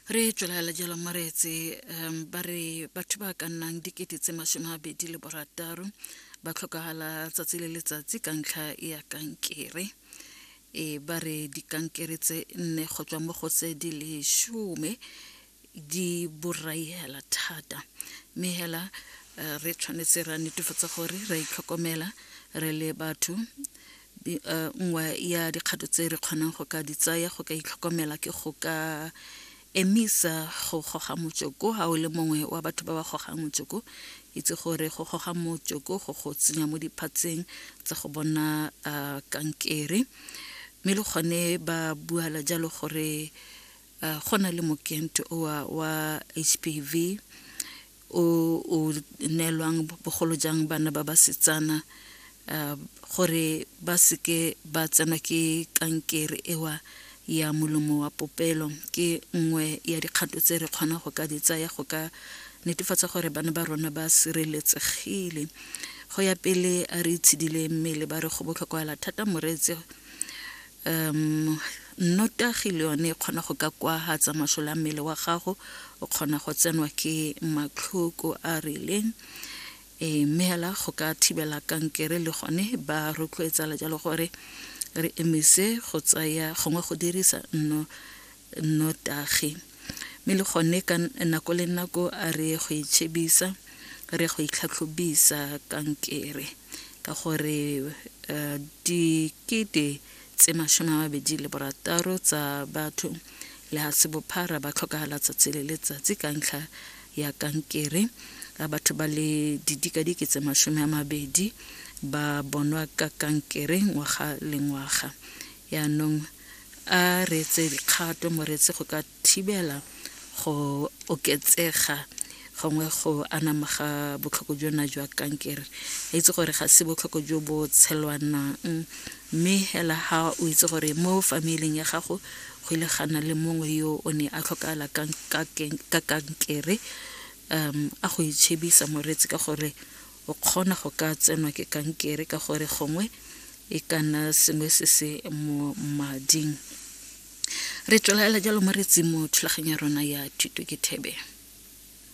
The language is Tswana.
re tswelela jalo moreetse um ba re batho ba ka nnang dikete tse masome a bedi le borataro ba tlhokagala tsatsi le letsatsi ka ntlha ya kankere e ba re dikankere tse nne go tswa mo go tse di leshome di borai hela thata mme hela eh, re tshwanetse ra netefatsa gore ra itlhokomela re le batho eh, nngwe ya dikgato tse re kgonang go ka di tsaya go ka itlhokomela ke go ka emisa go goga motsoko ga o le mongwe wa batho ba ba gogang motsoko itse gore go goga motsoko go go tsenya mo diphatseng tsa go bona eh, kankere mme le gone ba buala jalo gore uh, go na le mokento oa wa hpv o o neelwang bogolo jang bana ba basetsana uh, gore ba seke ba tsenwa ke kankere ewa ya molomo wa popelo ke nngwe ya dikgato tse re kgona go ka di tsaya go ka netefatsa gore bana ba rona ba sireletsegile go ya pele a re itshidile mmele ba re go botlhokwaela thata moreetse Um, nnotagi le yone e kgona go ka kwahatsa masole a mmele wa gago, o kgona go tsenwa ke matlhoko a rileng e mme hela go ka thibela kankere le gone ba rotloetsa le jalo gore re emise go tsaya gongwe go dirisa nno nnotagi. Mme le gone ka nako le nako a re go itšhebisa re go itlhatlhobisa kankere ka gore uh, dikete tse mashome a mabedi le borataro tsa batho le ga se bophara ba tlhokagala tsatsi le letsatsi ka ntlha ya kankere a batho ba le didikadike tse mashome a mabedi ba bonwa ka kankere ngwaga le ngwaga yaanong a reetse dikgato moreetsi go ka thibela go oketsega gongwe go anama ga botlhoko jona jwa kankere a itse gore ga se botlhoko jo bo tshelwanang mme hela ga o itse gore mo familing ya gago go ile ga na le mongwe yo o ne a tlhokala ka kankere um a go itšhebisa moreetsi ka gore o kgona go ka tsenwa ke kankere ka gore gongwe e ka nna sengwe se se mo mading re tswelela jalo mo re tsimo thulaganyo ya rona ya thuto ke thebe